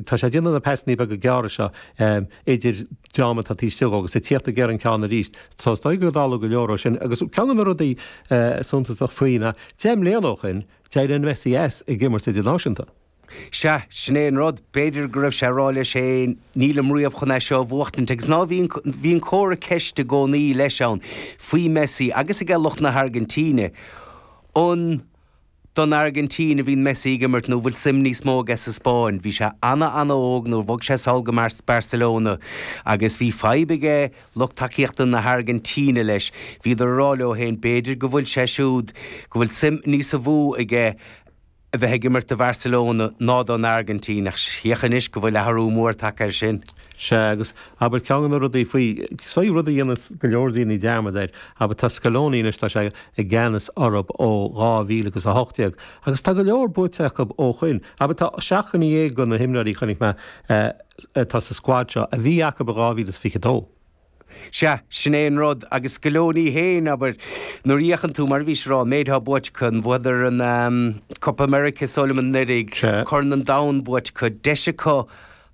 Tá sé ag déanamh na pasannaí beaga gearra seo idir dream atá taobh istigh agus ag tíocht go deireadh ceann arís. Tá, is dóigh go dála go leor ó shin agus ceann de na rudaí suntasach faoi ná deich mbliana ó shoin d'éirigh Messi as ag imirt idirnáisiúnta. Sea, sin é an rud, b'fhéidir go raibh sé ag rá leis féin, nílim riamh chun é seo a bhuachtaint agus ná bhíonn comhartha ceiste i gcónaí leis ann faoi Messi agus aige lucht na hAirgintíne. An. Don Airgintín a bhíonn Messi ag imirt nó an bhfuil suim níos mó aige sa Spáinn? Bhí sé ana ana óg nuair bhog sé sall go Barcelona agus bhí fadhb ag lucht tacaíochta na hAirgintíne leis. Bhíodar ag rá leo féin b'fhéidir go bhfuil sé siúd, go bhfuil suim níosa mó aige a bheith ag imirt do Barcelona ná don Airgintín, ach féach anois go bhfuil athrú mór tagtha air sin. Sea, agus, abair, ceann de na rudaí faoi, sea, rud a dhéanas go leor daoine dearmad air, abair, tá Scaloni anois, tá sé i gceannas orthub ó dhá mhíle agus a hocht déag, agus tá go leor buaite acu ó shoin. Abair, tá seacht nduine dhéag de na himreoirí, chonaic mé, atá sa squad seo, a bhí acu i dhá mhíle is fiche dó. Sea, sin é an rud, agus Scaloni fhéin, abair, nuair a fhéachann tú, mar a bhí sé ag rá, an méid atá buaite acu, an bhfuaireadar an, ahm, Copa America is dóigh liom anuraidh, Corn an Domhain buaite acu, deis acu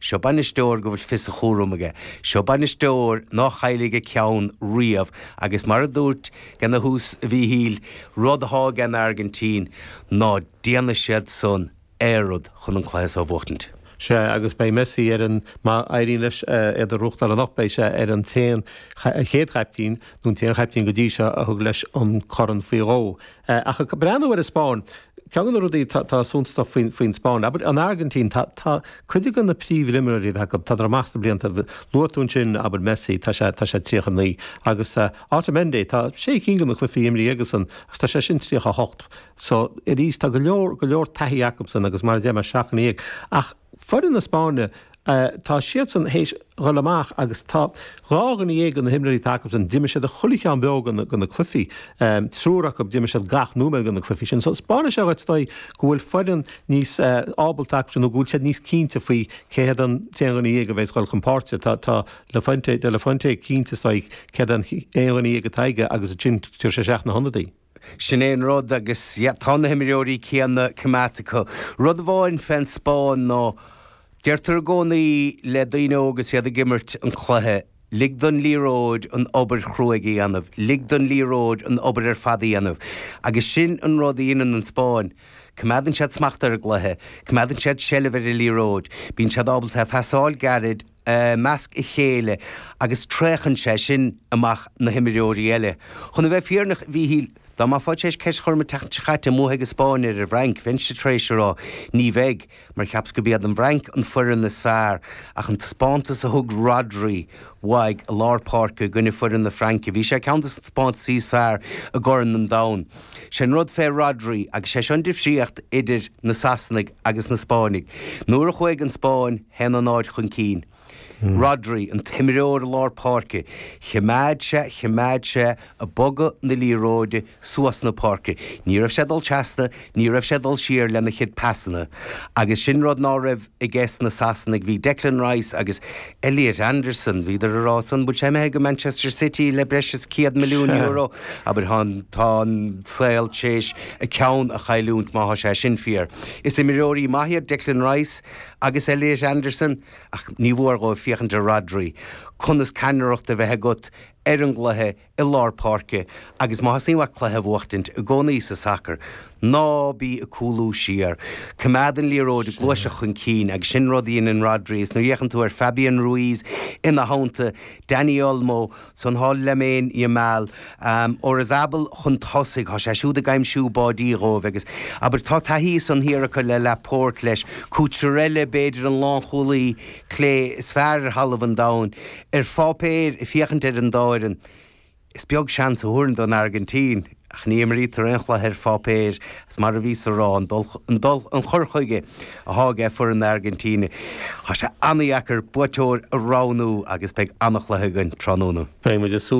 Seo bainisteoir go bhfuil fios a chúraim aige. Seo bainisteoir ná caillfidh a cheann riamh agus mar a dúirt Gene ar dtús, a Mhíchíl, rud atá ag an Airgintín, ná déanfaidh siad san aon rud chun an cluiche so a bhuachtaint. Sea, agus beidh Messi ar an, má éiríonn leis é a chrochadh anocht, beidh sé ar an t-aon, chéad chaiptín, nó an t-aon chaiptín go dtí seo, a thug leis an corn faoi dhó. Ach ag breathnú ar an Spáinn, ceann de na rudaí atá suntasach faoin Spáinn, abair, an Airgintín, tá cuid de na príomhimreoirí atá acu, tá siad amach sna blianta, luaigh tú ansin, abair, Messi, tá sé 39, agus Otamendi, tá sé cinn de na cluichí imrithe aigesan, agus tá sé sin 38. So, arís, tá go leor, go leor taithí acu san, agus mar a deir mé, seacht nduine dhéag. Ach. Foireann na Spáinne, tá siadsan théis dhul amach agus tá dhá dhuine dhéag de na himreoirí atá acu sin, d'imir siad chuile cheann beo de na cluichí, triúr acu d'imir siad gach nóiméad de na cluichí sin. So spáineann sé is dóigh go bhfuil foireann níos ábalta acu nó go bhfuil siad níos cinnte faoi cé hiad an t-aon dhuine dhéag a bheidh ag dhul chun páirce. Tá tá La Fuente, de la Fuente cinnte is dóigh cé hiad an t-aon dhuine dhéag atá aige agus ansin cuir sé isteach na hionadaithe. Sin é an rud agus yeah tá na himreoirí céanna coimeádta acu. Rud amháin fén Spáinn ná deirtear i gcónaí le daoine óga is iad ag imirt an chluiche, lig don liathróid an obair chruaidh a dhéanamh, lig don liathróid an obair ar fad a dhéanamh agus sin an rud a dheineann an Spáinn. Coimeádann siad smacht ar an gcluiche, coimeádann siad seilbh ar an liathróid, bíonn siad ábalta pasáil gairid, i measc a chéile agus traochann sé sin amach na himreoirí eile. Chun a bheith fírinneach, Mhíchíl, dá mbeifeá tar éis ceist a chur orm an tseachtain seo caite an mbuafaidh an Spáinn ar an bhFrainc, bheinnse tar éis a rá, ní bheidh, mar cheapas gurb iad an bhFrainc an foireann is fearr, ach an taispeántas a thug Rodri uaidh i lár páirce i gcoinne foireann na Fraince, bhí sé ar cheann des na taispeántaisí is fearr i gCorn an Domhain. Sé'n rud fé Rodri, agus sé seo an difríocht idir na Sasanaigh agus na Spáinnigh, nuair a chuaigh an Spáinn, a haon a náid chun cinn. Rodri, an t-imreoir lár páirce, choimeád sé choimeád sé a bogadh na liathróide suas na páirce. Ní raibh sé dul trasna, ní raibh sé dul siar lena chuid pasanna. Agus sin rud ná raibh i gceist na Sasanaigh. Bhí Declan Rice agus Elliot Anderson, bhíodar a rá san, bhfuil sé imithe go Manchester City le breis is céad milliún euro? Abair, tá an tá an saol téis a ceann a chailliúint má tá sé sin fíor. Is imreoirí maith iad Declan Rice. Agus Elliot Anderson, ach ní mór dhóibh féachaint ar Rodri, conas ceannaireacht a bheith agat ar an gcluiche i lár páirce agus má theastaíonn uait cluiche a bhuachtaint i gcónaí sa sacar, ná bí ag cúlú siar. Coimeád an liathróid ag gluaiseacht chun cinn agus sin an rud a dheineann Rhodri is nuair a fhéachann tú ar Fabian Ruiz ina theannta, Dani Olmo, Ansan thá Lamine Yamal am Oyarzabal chun tosaigh, thá sé siúd ag aimsiú báidí dhóibh agus, abair, tá taithí ansan thiar acu le Laporte, leis, Cucurella, b'fhéidir, an lánchúlaí clé is fearr ar thalamh an domhain, ar pháipéar, ag féachaint ar an dá fhoireann. Is beag seans a thabharfainn don Airgintín. Ach ní imrítear aon chluiche ar pháipéar, is mar a bhíos a rá, an dul, an cur chuige atá aige foireann na hAirgintíne. Tá sé an-deacair buaiteoir a roghnú agus beidh an-chluiche againn tráthnóna. Beidh muid ag